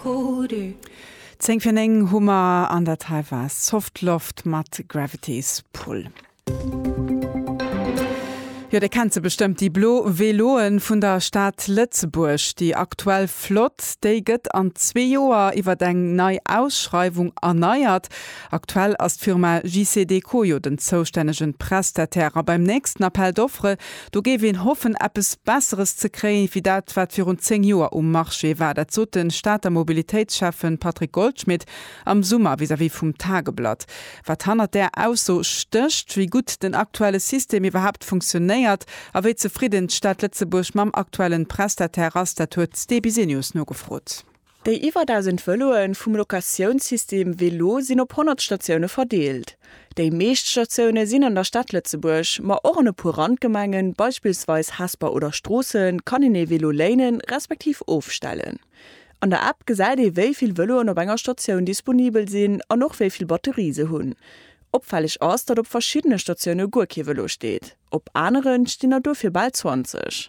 Kodu. Zéng fir néng hu mer an dat hei war Soft Loft mat Gravity's Pull. Jo dir kennt se bestëmmt déi blo Veloen vun der Stad Lëtzebuerg. Déi aktuell Flott déi gëtt an zwee Joer iwwert eng nei Ausschreiwung erneiert. Aktuell ass d'Firma JCDecaux jo den zoustännegen Prestataire a beim nächsten Appel d'offre Do géif een hoffen, eppes Besseres ze kréien, wéi dat, wat virun zéng Joer um Marché war. Dat sot de Stater Mobilitéitsschäffe Patrick Goldschmidt am Summer vis-à-vis vum Tageblatt. Wat hannert där Ausso stécht, wéi gutt den aktuelle System iwwerhaapt funktionéiert a wéi zefridden d'Stad Lëtzebuerg mam aktuellen Prestataire ass, dat huet d'Sti Bisenius nogefrot. Déi iwwer 1.000 Vëloe vum Locatiounssystem VeLo sinn op 100 Statioune verdeelt. Déi meescht Statioune sinn an der Stad Lëtzebuerg, ma och an e puer Randgemengen, beispillsweis Hesper oder Stroossen, kann een ee Velo léinen, respektiv ofstellen. An der App gesäit ee wéi vill Vëloen op enger Statioun disponibel sinn an och wéi vill Batterie se hunn. Opfälleg ass, datt op verschiddene Statioune guer kee Vëlo steet, op aneren stinn der dofir bal 20.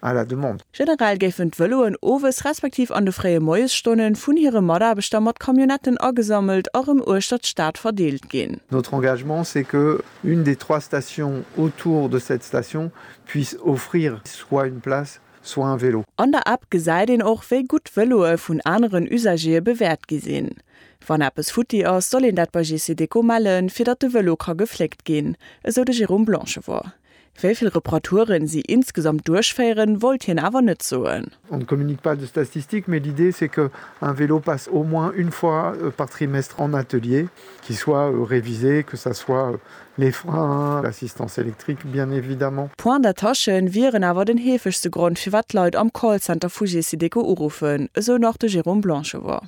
à la demande. Generell géifen d'Vëloen owes respektiv an de fréie Moiesstonnen vun hire Mataarbechter mat Camionnetten agesammelt a rëm uechtert d'Stad verdeelt ginn. Notre engagement, c'est que une des trois stations autour de cette station puisse offrir soit une place, soit un vélo. An der App gesäit een och, wéi gutt d'Vëloe vun aneren Usagere bewäert gi sinn. Wann eppes futti ass, soll een dat bei GC Deco mellen, fir datt de Vëlo ka gefléckt ginn, esou de Jérôme Blanchevort. Wéi vill Reparaturen si insgesamt duerchféieren, wollt hien awer net soen. On ne communique pas de statistiques, mais l'idée c'est que un vélo passe au moins une fois par trimestre en atelier, qu'il soit révisé, que ça soit les freins, l'assistance électrique bien évidemment. Points d'attache wieren awer den heefegste Grond firwat d'Leit am Callcenter vu Gesiteco uruffen, esou nach de Jérôme Blanchevort.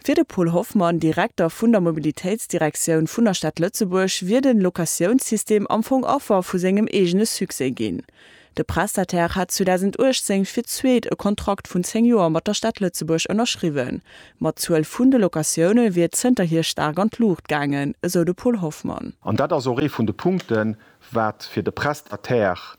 Fir de Paul Hoffmann, Direkter vun der Mobilitéitsdirektioun vun der Stad Lëtzebuerg, wier de Locatiounssystem am Fong Affer vu sengem eegene Succès ginn. De Prestataire hat 2018 fir d'zweet e Kontrakt vun 10 Joer mat der Stad Lëtzebuerg ënnerschriwwen, ma d'Zuel vun de Locatioune wier zënterhier staark an d'Luucht gaangen, esou de Paul Hoffmann. An dat ass och ee vun de Punkten, wat fir de Prestataire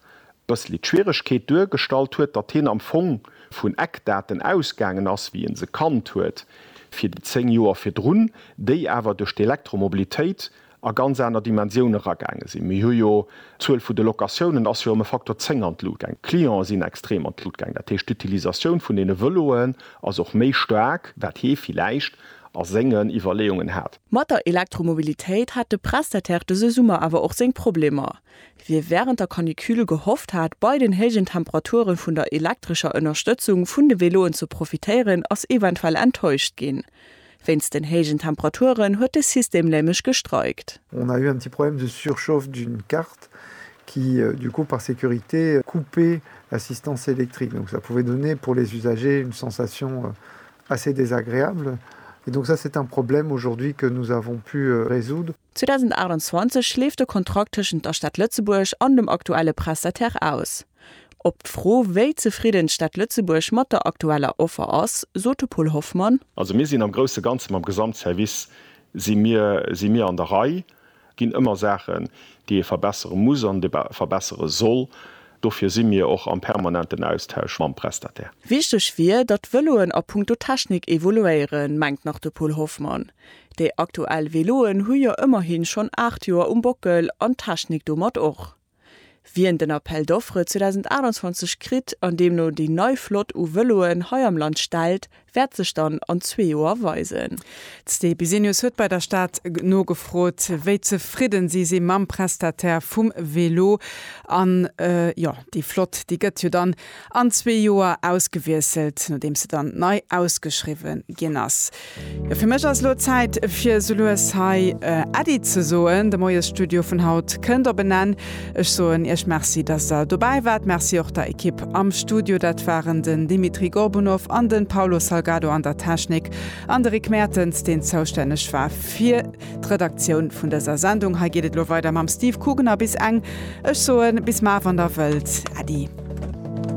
Bëssli d'Schwieregkeet duergestallt huet, datt hien am Fong vun Eckdaten ausgaangen ass, wéi en se kannt huet, fir déi 10 Joer virdrun, déi awer duerch d'Elektromobilitéit a ganz aner Dimensioune ragaange sinn. Mir hu jo, d'Zuel vu de Locatiounen ass jo ëm e Faktor 10 an d'Lut gaang, d'Clientë sinn extrem an d'Lut gaang, dat heescht d'Utilisatioun vun deene Vëloen ass och méi staark, wat hie villäicht a sengen Iwwerleeungen hat. Mat der Elektromobilitéit hat de Prestataire dëse Summer awer och seng Problemer. Wie während der Canicule gehofft hat, bei den héijen Temperaturen vun der elektrescher Ënnerstëtzung vun de Veloen ze profitéieren, ass eventuell enttäuscht ginn. Wéinst den héijen Temperaturen huet de System nämlech gestreikt. On a eu un petit problème de surchauffe d'une carte qui du coup par sécurité coupait l'assistance électrique donc ça pouvait donner pour les usagers une sensation assez désagréable et donc ça c'est un problème aujourd'hui que nous avons pu résoudre. 2028 leeft de Kontrakt tëschent der Stad Lëtzebuerg an dem aktuelle Prestataire aus. Op d'Fro, wéi zefridden d'Stad Lëtzebuerg mat der aktueller Offer ass, sot de Paul Hoffmann. Also mir sinn am grousse Ganze mam Gesamtservice si mir si mir an der Rei. Et ginn ëmmer Saachen, déi ee verbessere muss an verbessere soll. Dofir si mir och am permanenten Austausch mam Prestataire. Wichteg wier, datt d'Vëloen a punkto Technik evoluéieren, mengt nach de Paul Hoffmann. Déi aktuell Veloen hu jo ëmmerhin schonn 8 Joer um Bockel an d'Technik domat och. Wien den Appel d'offres 2028 kritt an deemno déi nei Flott u Veloen hei am Land stellt, wäert sech dann an zwee Joer weisen. D'Sté Bisenius huet bei der Stad nogefrot, wéi zefridden si si mam Prestataire vum Velo. An jo, déi Flott, déi gëtt jo dann an zwee Joer ausgewiesselt, nodeems se dann nei ausgeschriwwen ginn ass. Jo, fir mech ass elo Zäit, fir sou lues hei Äddi ze soen. De Moiesstudio vun haut kënnt op en Enn. Ech soen Iech Merci, dass Der dobäi waart. Merci och der Ekipp am Studio, dat waren den Dimitri Gorbunov an de Paulo Salgado an der Technik an de Rick Mertens, deen zoustänneg war fir. D'Redaktioun vun dëser Sendung hei geet et lo weider mam Steve Kugener bis eng, ech soen bis mar wann der wëllt Äddi.